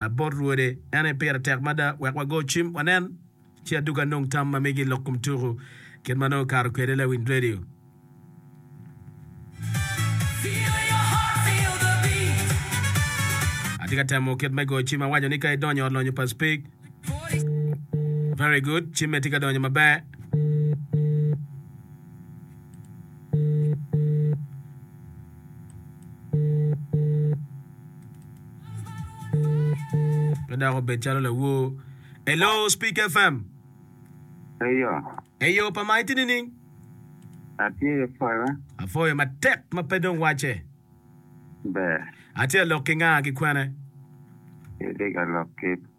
bot rwode en aye pire tek mada wek wago cim wanen ci adugo anong tam ma migi lok kom tuku kit ma nongo okato kwede i lawiny redio. Atye ka temo kit me go cim awaco ni ka idonyo ot lonyo pa speak very good cimme tye ka donyo maber. Pe dok obed calo lawor. Hello, Speak FM. Eyo, Eyo pa ma itye nining? atye i pwolo. Apwoyo matek ma pe dong wacce. Ber, Atye alok ki nga ki kwene? itye ka lok ki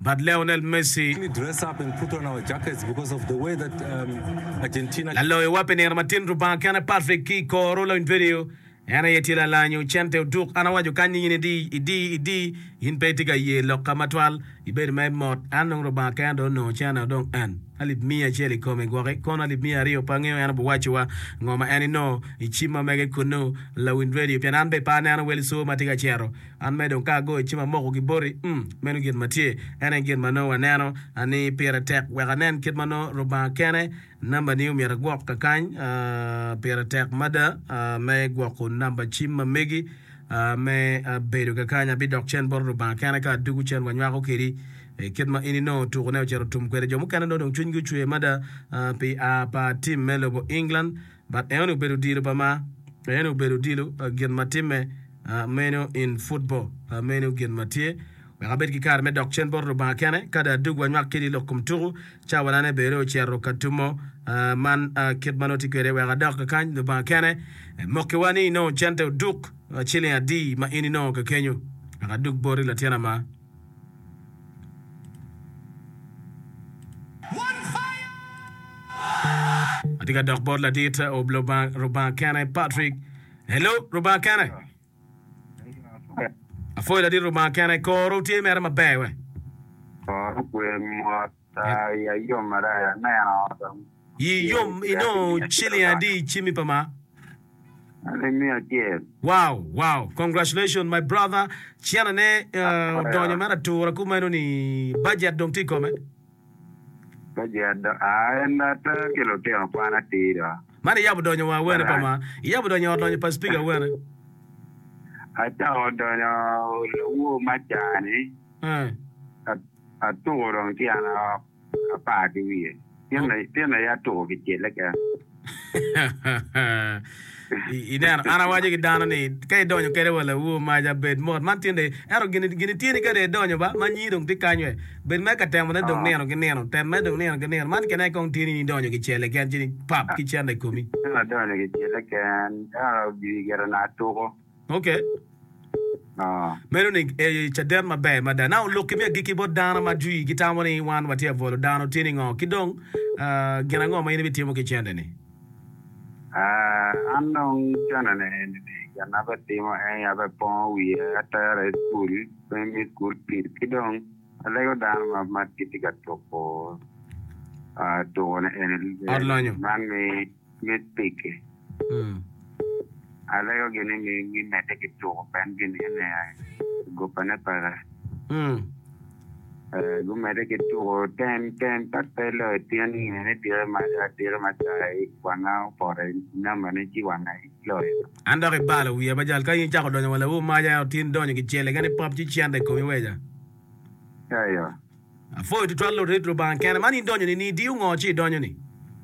bad Lionel Messi, laloyo wa pi nino matin Lubanga kene Patrick ki koro lony vedio en aye tye lalanyo cente oduk an awaco kanyi in idi idi idi in pe itye ka ye loka matwal ibedo ma imot an dong Lubanga kene dong onongo cene o dong en alip miya acel ikomi gwoki kono alip miya aryo pe angeyo en obiwaco wa ngo ma en inongo icim ma mege kunu lawiny vedio pien an bene pe aneno wel soo matye ka cero An me dong ka ago i cima amoko gi boti, um, meno gin ma tye. En aye gin ma nongo aneno ni pire tek wek anen kit ma nongo Lubanga kene nambani omyero agwok kakany. Pire tek mada me gwoko namba cim ma megi me bedo kakany. Abidok cen bot Lubanga kene ka adwogo cen wanywako kedi. Kit ma in inongo otuko ne ocito otum kwede. Jo mukene nongo dong cwinygi ocwe mada pi aa pa tim me lobo England. but en obedo odilo pa ma en obedo odilo pa gin ma timme meno in football pa meno gin ma tye wek abed ki kare me dok cen bot Lubanga kene ka dong adwogi wanywak kidi lok kom tuku cawana ne bene ocito ka tumo man kit ma noti kwede wek adok kakany Lubanga kene mokiwa ni inongo cente oduk ciling adi ma in inongo kekenyo wek adug boti latin ama. Atye ka dok bot ladit ob Lubanga kene Patrick. Hello Lubanga kene. Apwoyo ladit Lubanga kene. Koro tye mere maber we? Koro kwe mot. Ii yom inongo ciling adi i cimi pa ma? Wow wow congratulations my brother cene ne odonyo mere atura kumeno ni budget dong tye ikome. Man iyabo donyo wa awene pa ma? Iyabo donyo ot lonyo pa speaker awene? Ii. Atuko dong ci an aok apar ki wiye. Tyen aye atuko kicele keken. Ineno, an awaco ki dano ni, ka idonyo kede wa laur maca bed mot man tinde. Ento gin ityeni ka dong idonyo ba, ma nyii dong tye kany we. Bed mere ka temone dong nino ki nino. Tem mere dong nino ki nino. Man kene aye kong tyeni ni idonyo kicele keken ci ni pap ki cente i komi. Tyen adonyo kicele keken, ento gin obyelo na atuko. Ok. Ah. Meno ni e caden maber mada. Now lok kimi agikki bot dano ma jwi gitamo ni wan watye abolo dano tye ningo? Ki dong ah, gin ango ma in ibitimo ki cente ni? Ah, an dong cente ni eni ni gin ma abitimo en aye abipongo wiye, atere i school me me school fees ki dong alego dano ma ma gitye ka tuko ah tuko ni eni Ot lonyo. man ni Mit pigi. Alego gini ni gimedde ki tuko ben gini ene i guppane peke. Gumedde ki tuko ten ten pat pe loyo tyen ni ene dire ma adire ma cayi wanga opoto i namba ne ci wanga iloyo. An dok ibalo wiya ma jal ka in icako donyo wa lawu maja ento tin donyo ki cele kene pop ci cente i komi weja. Eyo. Apwoyo tutwal lurit lubanga kene man in donyo ni ni idiyo ngo ci idonyo ni.